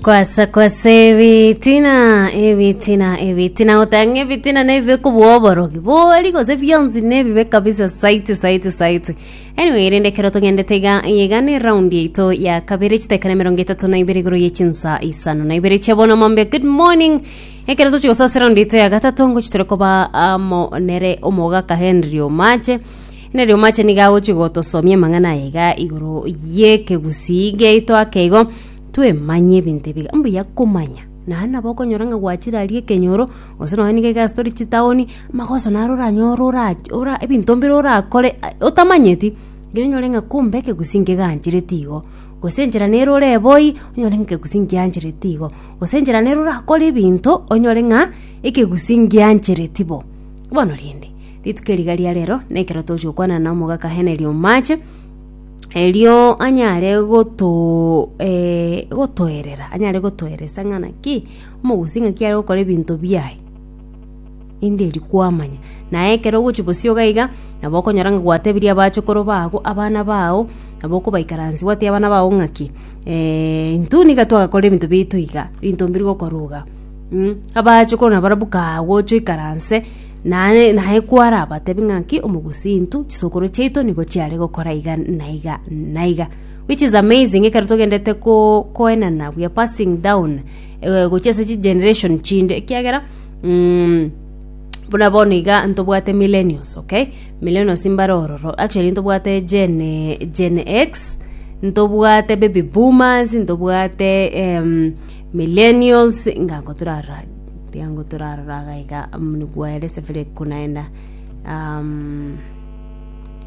Kwasa kwasa ebitina ebitina ebitina otanga ebitina nebibe kobua oborogi bori gose bionsi nebibe kabisa saiti saiti saiti anyway rende kero togendete iga iga ne round yaito ya kabere chitekana mirongo itatu na ibere igoro ye chinsa isano na ibere chiabono mombe good morning Ekero tochia gosasera ondiito ya gatato, ngochia tore koba amo nere omogaka Henry Omache. Henry Omache nigo agochia gotosomia amang'ana aye iga igoro y'ekegusii giaito ake igo, twemanye ebinto ebiga. Mbuya komanya, naye nabo okonyora ng'a gwachire aria ekenyoro, gose nonye niga egasi tori chitaoni, amagoso naro oranyore ora ora ebinto mbire orakore ai otamanyeti, ekero onyore ng'a kumbe ekegusii nkeganchreti igo, gose enchera nere orebe oyi, onyore ng'a ekegusii nkianchreti igo. gose enchera nere orakore ebinto onyore ng'a ekegusii ngianchereti bo. Bono rende, rituko eri riga ria rero nekero togochia gokwana na omogaka Henry Omache, erio anyare goto eh, gotoerera, anyare gotoeresa ng'a naki omogusii ng'aki are gokora ebinto biaye. Inde erio kwamanya. Na ekero ogochia bosio iga iga, nabo okonyora ng'a gwatebirie abachokoro bago abana bao, nabo okobaikaransia gwatebi abana bao ng'aki, intwe niga twagakorire ebinto biaito iga, ebinto mbiri gokorwa iga. Abachokoro nabarabwo kagocha oikaranse, naye naye kwarabatebi ng'aki, omogusii intwe, chisokoro chiaito nigo chiare gokora iga na iga na iga. Which is amazing ekero togendete ko koenana, we are passing down gochia ase chigeneration chinde, ekiagera. Mm, buna bono iga ntobwate millennials okay millennials mbare ororo actually ntobwate gen, gen x ntobwate baby boomers ntobwate em, millennials inga ango torarora tiga ango torarora iga iga mm, nigwere sevire konaenda um,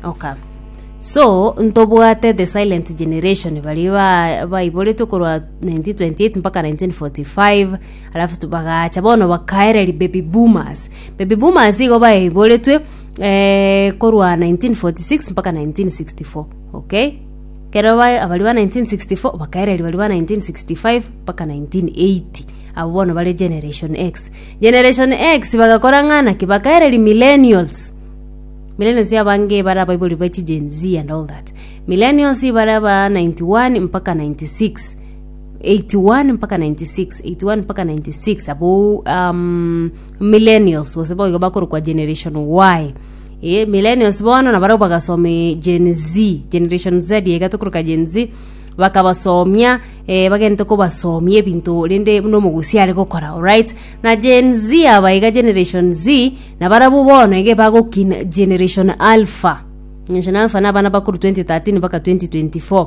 okay so ntobwate the silent generation baria ba- baiboretwe korwa 1928 mpaka 1945 Alafu tu- bagacha bono bakaereri baby boomers baby boomers igo baiboretwe eh, korwa 1946 mpaka 1964 okay kero ba- abari ba 1964 bakaereri bari ba 1965 mpaka 1980 abo bono bare generation x generation x bagakora ng'a naki bakaereri millennials millennials abange bare abaibori ba chi gen z and all that millennials bare aba 91 mpaka 96 81-96 81-96 abwo um, millennials gose boigo bakorokwa generation y e millennials bono na barabwo bagasome gen z generation z iga tokoroka gen z bakabasomia eh, bagente kobasomia ebinto rende buna omogusi are gokora alright na gen z aba iga generation z na barabwo bono iga bagokina generation alpha generation alpha na abana bakuru 2013 mpaka 2024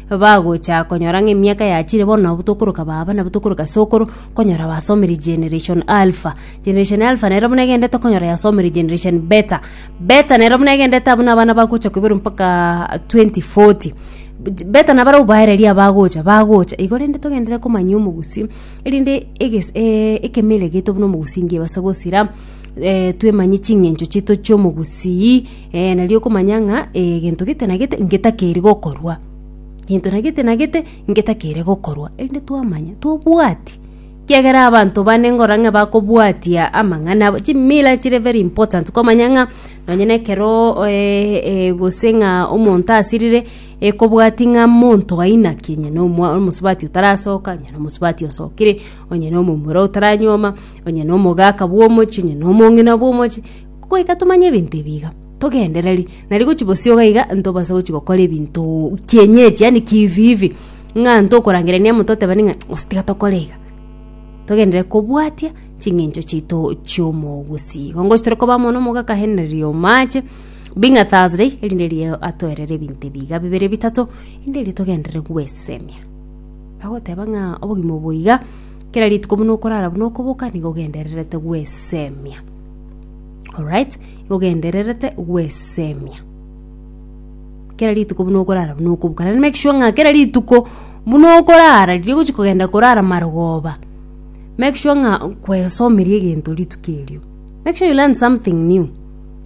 bagocha konyora ng'a emiaka yachire bono nabo tokoroka baba nabo tokoroka sokoro konyora basomire generation alpha generation alpha nero buna egendete okonyora yasomire generation beta beta nero buna egendete abwo na abana bagocha koiborwa mpaka 2040 beta nabare obaereria abagocha bagocha igo rende togenderere komanyia omogusii erinde egesi eeh ekemere geito buna omogusii ngebase gosira twemanye ching'encho chiaito chiomogusii. Ee, nari okomanya ng'a egento gete na gete ngetakeiri gokorwa, gento na gete na gete ngetakeire gokorwa, erinde twamanya tobwati. Kiagera abanto bane ngora ng'a bakobwatia amang'ana abo, chimila chire very important komanya ng'a nonye na ekero eh gose ng'a omonto asirire, ekobwati ng'a monto aina ki, onye na omwa omosubati otarasoka, onye na omosubati osokire, onye na omomura otaranyuoma, onye na omogaka bwa omochie, onye na omong'ina bwa omochie. Goika tomanye ebinto ebi iga, togendereri. Nari gochi bosio iga iga ntobase gochi gokora ebinto kienyeji yaani kivivi, ng'a ntokorangerania amo totebani ng'a gose tiga tokore iga. Togenderere kobwatia ching'encho chiaito chi'omogusii. Igo ngochi tore koba amo nomoke akaenenera omaache, being a Thursday, erinde riria atoerere ebinto ebi iga bibere bitato, rinde erio togenderere gwesemia. Bagoteba ng'a obogima obo iga, kera rituko buna okorara buna okoboka nigo ogendererete gwesemia. Alright, igo ogendererete gwesemia. Kera rituko buna okorara buna okobuka. Naende make sure ng'a kera rituko buna okorara, riria ogochia kogenda korara marogoba, make sure ng'a kwesomeria egento rituko erio. Make sure you learn something new.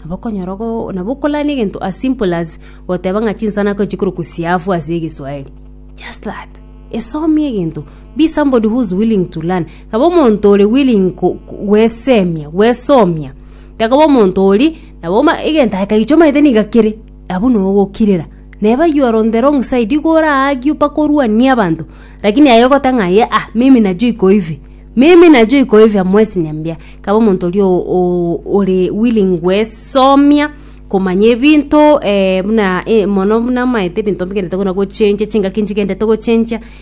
Nabo okonyora ogo nabo okolani egento as simple as goteba ng'a chinsana ko chikorokwa siafu ase egeswaeri. Just that. Esomia egento. Be somebody who is willing to learn. Taba omonto ore willing ko- ko- gwesemia, gwesomia. Takoba omonto oria, nabo ma- egento aye kagicha omanyete niga kere, abwo no ogokirera. Neba you are on the wrong side, igo oraagio mpaka orwanie abanto, lakini aye ogoteba ng'a aye ah, mimi najua iko hivi, mimi najua iko hivi hamwesi niambia. Kaba omonto oria o- o- ore willing gwesomia, komanya ebinto buna mono buna omanyete ebinto bigenderete buna gochencha, chingaki nchigenderete gochencha.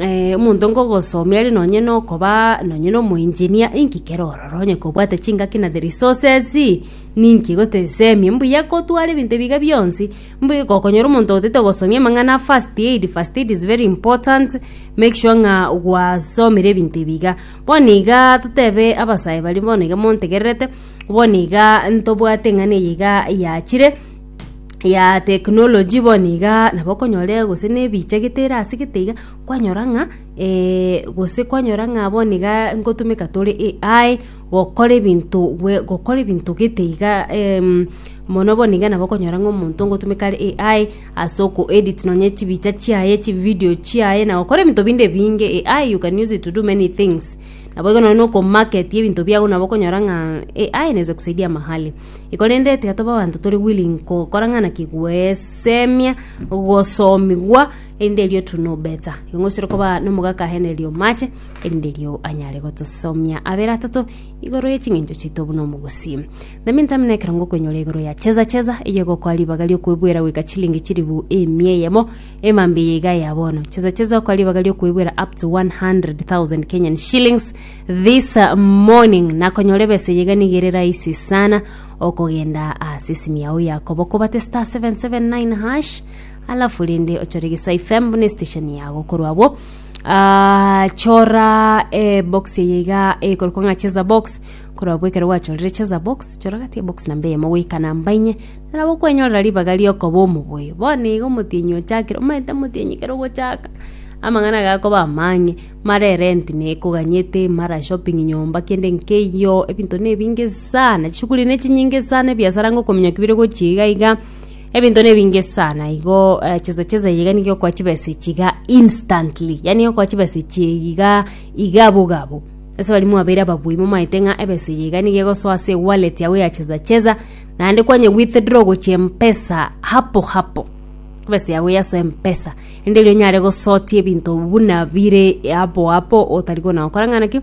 eh, omonto ngogosomia are nonye nokoba nonye na omoenginia inki kere ororo onye kobwate chingaki na the resources ninki gote semi mbuya kotwara ebinto ebiga bionsi mbu gokonyora omonto otete gosomia amang'ana a first aid first aid is very important make sure ng'a gwasomire ebinto ebiga bono iga totebe abasae baria bono iga montegererete bono iga ntobwate eng'ana eye iga yachire ya technology bono igaa nabo okonyora gose na ebichagete ere ase gete iga kwanyora ng'a gose kwanyora ng'a bono igaa ngotumeka tore AI gokora ebinto bwe gokora ebinto gete igaa mono bono iga nabo okonyora ng'a omonto ngotumeka are AI ase oko edit nonye chibicha chiaye chividio chiaye na gokora ebinto binde ebinge AI you can use it to do many things nabo igo nonye na okomarket ebinto biago nabo okonyora ng'a AI inaeza kusaidia mahali. Iko rende tiga tobe abanto tore willing gokora ng'a naki gwesemia gosomigwa, erinde erio to know better. Igo ng'oisire koba na omogaka aenere omache, erinde erio anyare gotosomia abere atato igoro ye ching'encho chiaito buna omogusii. The mean time nekero ngokoinyora igoro ya Cheza Cheza, eye egokoa ribaga riokoebuera goika chilingi chilifu emia eyemo, emambia eye iga ya bono. Cheza Cheza okoa ribaga riokoebuera up to 100,000 Kenyan shillings. This morning nakonyora ebesa eyige nigo ere rahisi sana okogenda ase esimi yao yakobo kobate star 779 hash alafu rende ochore gisai fm buna station yago korwa abwo Ah, chora eh, box eye iga ekorokwa ng'a cheza box korwa abwo ekero gwachorire cheza box chora gati ebox namba eyemo goika namba inye narabo okwenyorera ribaga riokoba omoboyo bono iga omotienyi ochakire omanyete omotienyi kero ogochaka amang'ana gakoba amang'e Mare rent nekoganyete, mara shopping nyomba kende nkeiyo, ebinto nebinge sana, chishughuli ne chinyinge sana, ebiasara ngokominyoka ki bire gochia iga iga, ebinto nebinge sana igo eh, chesa chesa eye iga nigo egokoa chibesa echi iga instantly, yaani egokoa chibesa echi iga iga boga bo. Ase baria mwabeire ababui momaete ng'a ebesa eye iga nigo egosoa ase ewallet yago ya chesa chesa, naende kwanye withdraw gochia mpesa hapo hapo, ebesa yago yasoe mpesa. Enderio onyare gosotia ebinto buna bire apo apo otari kona gokora ng'ana ki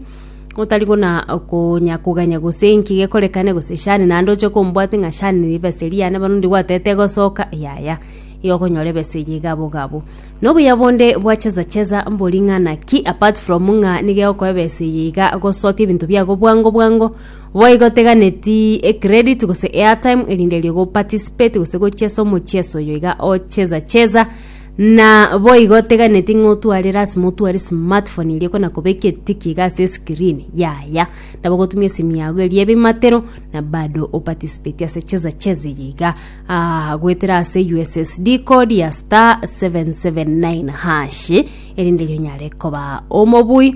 otari kona konya koganya gose enki gekorekane gose shani naende oche kombwate ng'a shani nigo ebesa eria yane bono ndigwatete egosoka yaya igo okonyora ebesa eyio iga abwo iga abwo. Na obuya bonde bwa chesa chesa mbori ng'ana ki apart from ng'a nigo egokoa ebesa eyio iga gosotia ebinto biago bwango bwango, Boigo teganeti e credit gose airtime erinde erio go participate gose gochesa omocheso oyo iga ocheza cheza na boigo teganeti ng'a otware lasima otware smartphone eria ekona kobeka etiki iga ase escreen yaya nabo ogotumia esimu yago eria ebimatero na bado o participate ase cheza cheza eye iga ah, goetera ase ussd code ya star 779 hash erinde erio onyare koba omobui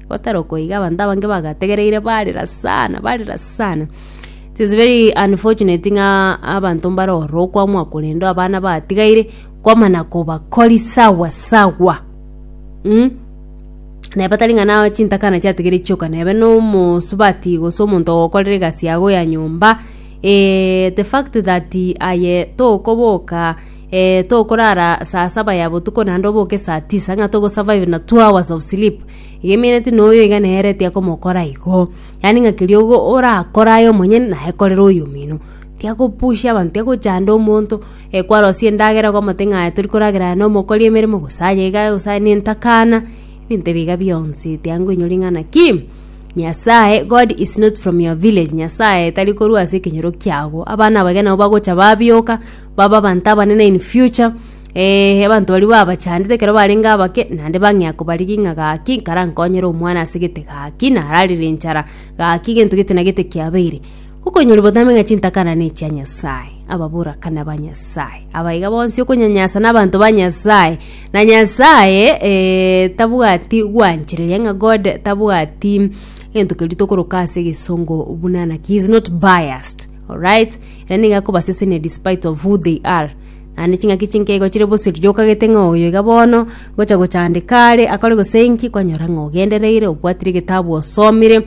Gotarokwa iga abanto abange bagategereire barera sana barera sana. It is very unfortunate ng'a abanto mbare ororo okwamwa korende abana batigaire kwamana kobakori sawa sawa mm. Neba tari ng'a na chintakana chiatigire chioka nebe na omosubati gose omonto ogokorera egasi yago ya nyomba eh, the fact that aye tokoboka Ee, tokorara saa saba ya botuko naende oboke saa tisa ng'a togosurvive na two hours of sleep. Iga emeneti na oyo iga nere etia komokora igo. Yaani ng'a keria ogo orakora aye omonyene naye korere oyomino. Tiga gopusha abanto, tiga gochanda omonto, eh kwarosia endagera okomote ng'a aye tori koragera aye na omokori emeremo gose aye iga gose aye na entakana, ebinto ebi iga bionsi tiga nkoinyora ring'ana ki, Nyasae, God is not from your village, Nyasae tari korwa ase ekenyoro kiago. Abana aba iga nabo bagocha babioka. babe abanto abanene in future, eh, abanto baria babachandete ekero barenge abake, naende bang'ea kobarigia ng'a gaki nkarankonyere omwana ase gete gaki nararire enchara, gaki gento gete na gete kiabeire. Gokonyora obotambe ng'a chintakana ne chia Nyasae, ababorakani ba Nyasae, aba iga bonsi okonyanyasa na abanto ba Nyasae, na Nyasae eh, tabwati gwanchereria ng'a God tabwati gento keria tokoroka ase egesongo buna naki, he is not biased. Alright, ere nigo akobasesenia despite of who they are. Naende ching'aki chinke igo chire boseri giokagete ng'a oyo iga bono, ngocha gochandeka are, akore gose inki, kwanyora ng'a ogendereire, obwatire egetabu osomire,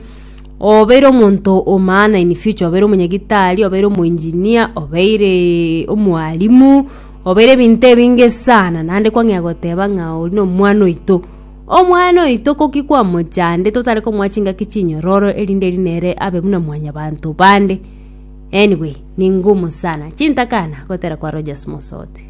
obeire omonto o maana in future, obeire omonyagitari, obeire omoengineer, obeireee omwalimu, obeire ebinto ebinge sana, naende kwang'ea goteba ng'a oria nomwana oito. Omwana oito ko ki kwamochande totare komoa chingaki chinyororo erinde erio nere abe buna mwanyabanto bande? Anyway, ningumu sana. Chintakana gotera kwa Rogers Mosoti.